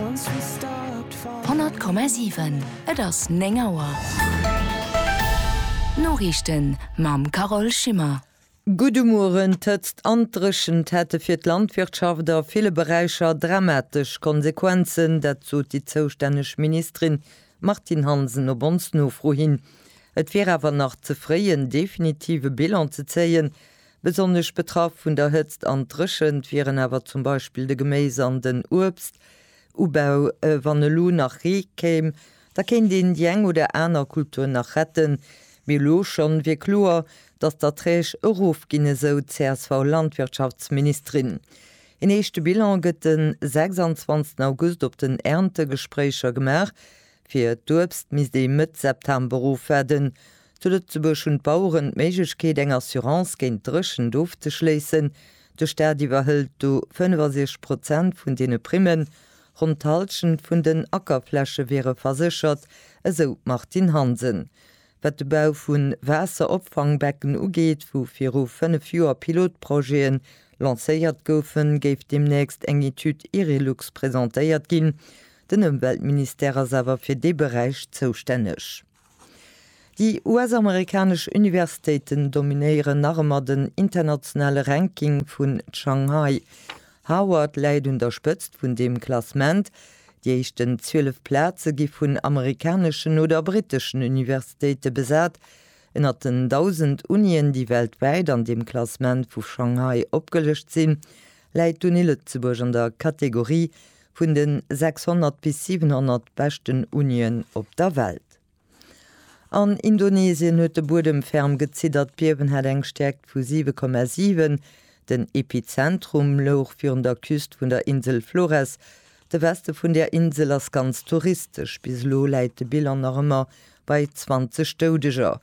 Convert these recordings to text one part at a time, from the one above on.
100,7, et ass 9 Auer. D'Noriichten mam Carole Schimmer. Gudde Mueren. D'Hëtzt an d'Dréchent hätte fir d'Landwirtschaft a ville Beräicher dramatesch Konsequenzen. Dat sot déi zoustänneg Ministerin Martine Hansen op ons Nofro hin. Et wier awer nach ze fréi en definitive Bilan ze zéien, Besonnesch betraff vun der Hëtzt an Dréchent wieren awer zum Beispill de Geméis an den Uebst Ubau. Wann elo nach Ree kéim, da kéint een déi eng oder aner Kultur nach retten, mee elo schonn wier kloer, datt d'Erträg erof ginn, esou csv Landwirtschaftsministerin. Een éischte Bilan gëtt de 26 August op den Erntegespréicher gemaach, Fir d'Uebst misst ee Mëtt September ofwaarden. Zu Lëtzebuerg hunn d'Baueren d'Méiglechkeet, eng Assurance géint d'Dréchent ofzeschléissen. De Staat iwwerhëlt do 65 Prozent vun deene Primmen. Ronn d'Hallschent vun den Ackerfläche wiere verséchert, esou d'Martine Hansen. Wat de Bau vu Waasseropfangbecken ugeet, wou viru fënnef Joer Pilotprojete lancéiert goufen, géif deemnächst eng Etüd IRILUX presentéiert ginn. Den Ëmweltministère ass awer fir dee Beräich zoustänneg. Déi US-amerikanesch Universitéiten dominéieren nach ëmmer den internationale Ranking vun Shanghai. Harvard läit un der Spëtzt vun deem Klassement. Déi éischten 12 Plaze gi vun amerikaneschen oder britteschen Universitéite besat. Ënnert den 1.000 Unien, déi weltwäit an deem Klassement vu Shanghai opgelëscht sinn, läit d'Uni Lëtzebuerg an der Kategorie Vun de 600 bis 700 beschten Unien op der Welt. An Indonesien huet de Buedem ferm geziddert. D'Biewen hat eng Stäerkt vu 7,7. Den Epizentrum louch virun der Küst vun der Insel Flores. De Weste vun där Insel ass ganz touristesch. Bis elo läit de Bilan nach ëmmer bei 20 Doudeger.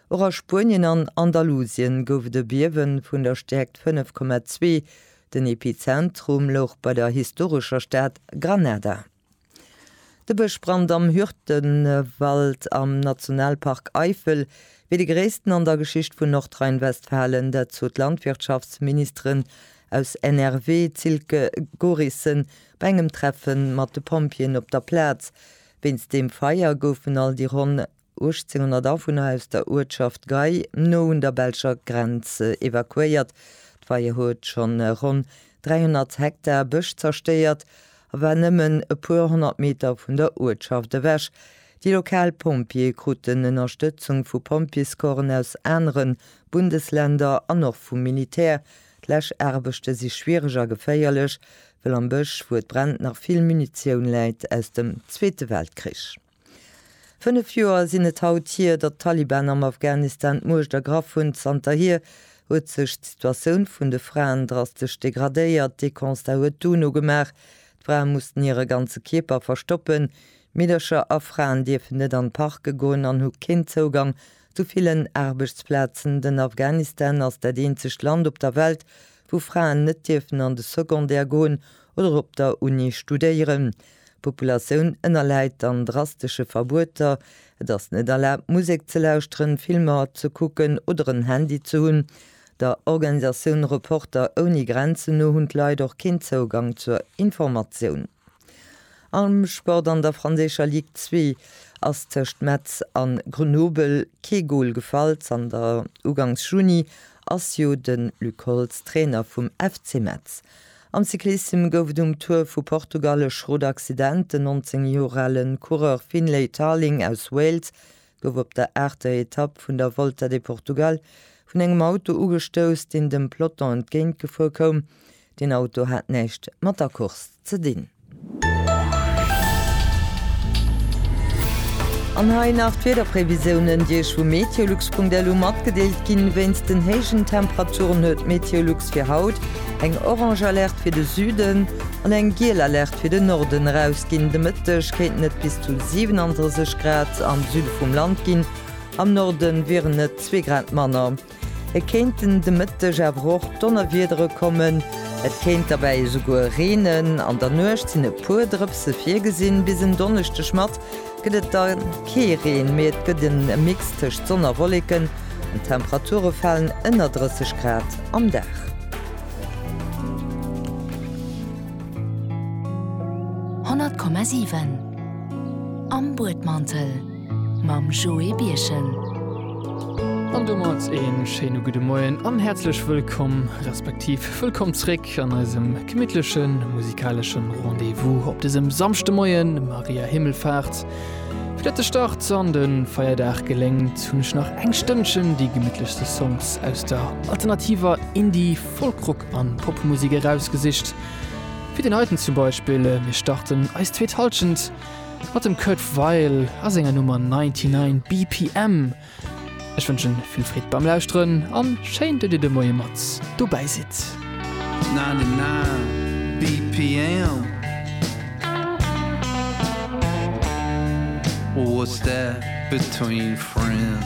Och a Spuenien an Andalusien gouf et e Biewen vun der Stäerkt 5,2. Den Epizentrum louch bei der historescher Stad Granada. De Bëschbrand am Hürtgenwald am Nationalpark Eifel wier de gréissten an der Geschicht vun Nordrhein-Westfalen. Dat sot d'Landwirtschaftsministerin aus NRW, d'Silke Gorissen, bei engem Treffe mat de Pompjeeën op der Plaz. Wéinst deem Feier goufen all déi ronn 1800 Awunner aus der Uertschaft Gay, no un der belscher Grenz, evakuéiert. D'Feier huet schonn ronn 300 Hektar Bësch zerstéiert a war nëmmen e puer honnert Meter vun der Uertschaft ewech. Déi lokal Pompjeeë kruten Ënnerstëtzung vu Pompjeescorpsen aus anere Bundesländer an och vum Militär. D'Läschaarbechte si schwiereg a geféierlech, wëll am Bësch, wou et brennt, nach vill Munitioun läit aus dem Zweete Weltkrich. Fënnef Joer sinn et haut hier, datt d'Taliban am Afghanistan d'Muecht ergraff hunn. Zanterhier huet sech d'Situatioun vun de Fraen drastesch degradéiert. Dee Constat huet d'UNO gemaach. D'Frae mussten hire ganze Kierper verstoppen. Meedercher a Fraen dierfen net an d'Parke goen an hu keen Zougang zu villen Aarbechtsplazen. Den Afghanistan ass dat eenzegt Land op der Welt, wou Fraen net dierfen an de Secondaire goen oder op der Uni studéieren. D'Populatioun ënnerläit dann drastesche Verbueter, et ass net erlaabt Musek ze lauschteren, Filmer ze kucken oder en Handy ze hunn. Der Organisatioun Reporter ouni Grenzen no hunn d'Leit och keen Zougang zur Informatioun. Am Sport, An der franséischer Ligue 2 ass tëscht Metz a Grenoble kee Gol gefall. Zanter ugangs Juni ass jo de Luc Holtz Trainer vum FC Metz. Am Cyclissem gouf et um Tour vu Portugal e Schrot-Accident. Den 19 Joer ale Coureur Finlay Tarling aus Wales gouf op der aachter Etapp vun der Volta de Portugal vun engem Auto ugestouss, deen dem Peloton entgéintgefuer koum. Den Auto hat näischt mat der Course ze dinn. An hei nach d'Wiederprévisiounen, déi Iech vu meteolux.lu matgedeelt ginn. Wéinst den héijen Temperaturen huet Meteolux fir haut eng orange Alerte fir de Süden an eng giel Alerte fir den Norden erausginn. De Mëtteg kéinten et bis zu 37 Grad am Süde vum Land ginn, am Norde wieren et zwee Grad manner. Et kéinten de Mëtteg awer och Donnerwiedere kommen, et kéint derbäi esouguer reenen. An der Nuecht sinn e puer Drëpse virgesinn. Bis en Donneschdeg mat gëtt et da kee Reen, mee et gëtt en Mix tëscht Sonn a Wolleken an d'Temperature falen ënner 30 Grad am Dag. Honnert Komma siwen am Buedmantel. mam Joé Birchen. An domat ee schéine gudde Moien an häerzlech wëllkomm, respektiv wëllkomm zréck an eisem gemittleche musikalesche Rendez-vous op dësem Samschdemoien, Maria Himmelfahrt. Fir datt de Start an de Feierdag geléngt, hunn ech nach eng Stënnchen déi gemittlechste Songs aus der alternativer Indie-, Folk-Rock an Popmusek erausgesicht. Fir deen heiten zum Beispill, mir starten eis zweet Halschent mat dem Kurt Weill a senger Nummer 99 BPM. Ech wënschen vill Freed beim Lauschteren an schéin dat dir de Moie mat dobäi sidd. 99 BPM What's that between friends?